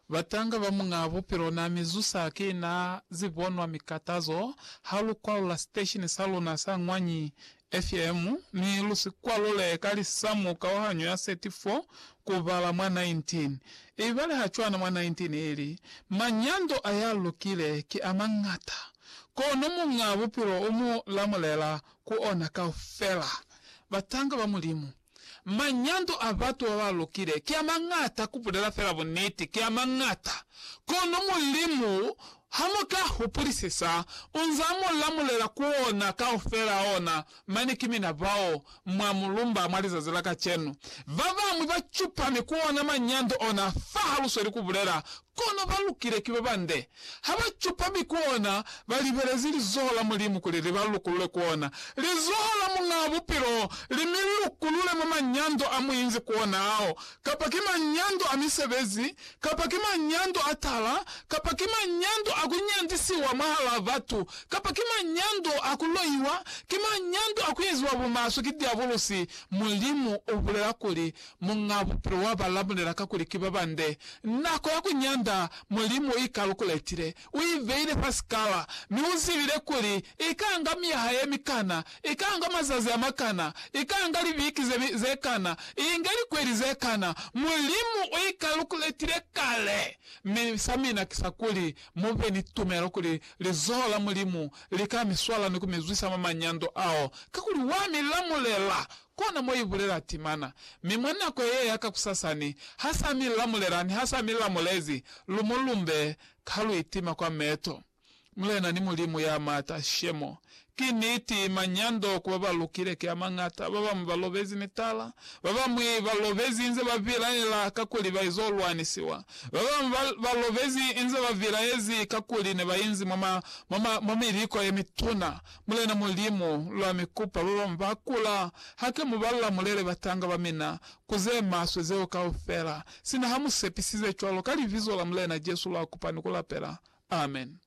Batanga ba Muñaa Bupilo na mi zusa ki na zibonwa mikatazo ha lu kwalula siteshini sa luna sa Ñwanyi FM, mi lu si kwalule ka lisamu kauhanyo ya 34 ku bala mwa 19. Ibale ha cwana mwa 19 ili, Manyando a ya lukile ki a mañata, kono Muñaa Bupilo u mu lamulela ku ona kaufela. Batanga ba Mulimu. Manyando a batu ba ba lukile ki a mañata, ku bulela fela buniti, ki a mañata. Kono Mulimu, ha mu ka hupulisisa, u nz'a mu lamulela ku ona kaufel'a ona. Mane ki mina bao, mwa mulumba mwa lizazi la kacenu. Ba bañwi ba cupami ku ona manyando ona fa ha lu sweli ku bulela, Kono ba lukile ki ba bande. Ha ba cupa mi koona ba libelezi lizoho la Mulimu kuli li ba lukulule koona lizoho la Muñaa Bupilo li mi lukulule mwa manyando a mu inzi koona ao, kapa ki manyando a misebezi, kapa ki manyando a tala, kapa ki manyando a ku nyandisiwa mwahalaa batu, kapa ki manyando a ku loiwa, ki manyando a ku eziwa bumaswe ki diabulusi, Mulimu u bulela kuli, Muñ'a Bupilo wa ba lamulela kakuli ki ba bande. Nako ya ku nyanda Mulimu i kalukuletile. U i beile fa sikala, mi u zibile kuli i ka nga myaha ye mikana, i ka nga mazazi a makana, i ka nga libiki ze, ze kana, i inge likweli ze kana. Mulimu u i kalukuletile kale. Mi sa mina ki sa kuli mu be ni tumelo kuli lizoho la Mulimu li ka mi swala ni ku mi zwisa mwa manyando ao, kakuli wa mi lamulela Kona mo i bulela timana. Mi mwa nako ye ya kakusasani, ha sa mi la mulela ni ha sa mi la mulezi, lu mu lumbe, ka lu itima kwa meto. Mulena ni Mulimu ya Mata, shemo. Ki niti, manyando ku ba ba lukile ki a mañata. Ba bañwi ba lobezi mitala. Ba bañwi ba lobezi inze ba bilaela kakuli ba izo lwanisiwa. Ba bañwi ba, ba lobezi inze ba bilaezi kakuli ne ba inzi mwa ma, mwa ma, mwa miliko ye mituna. Mulena Mulimu, lwa mi kupa babamwi ba kula, hake mu balla mulele batanga ba mina ku ze maswe zeo kaufela, sina ha mu sepisize cwalo, ka Libizo la Mulena Jesu lwa kupa ni ku lapela. Amen.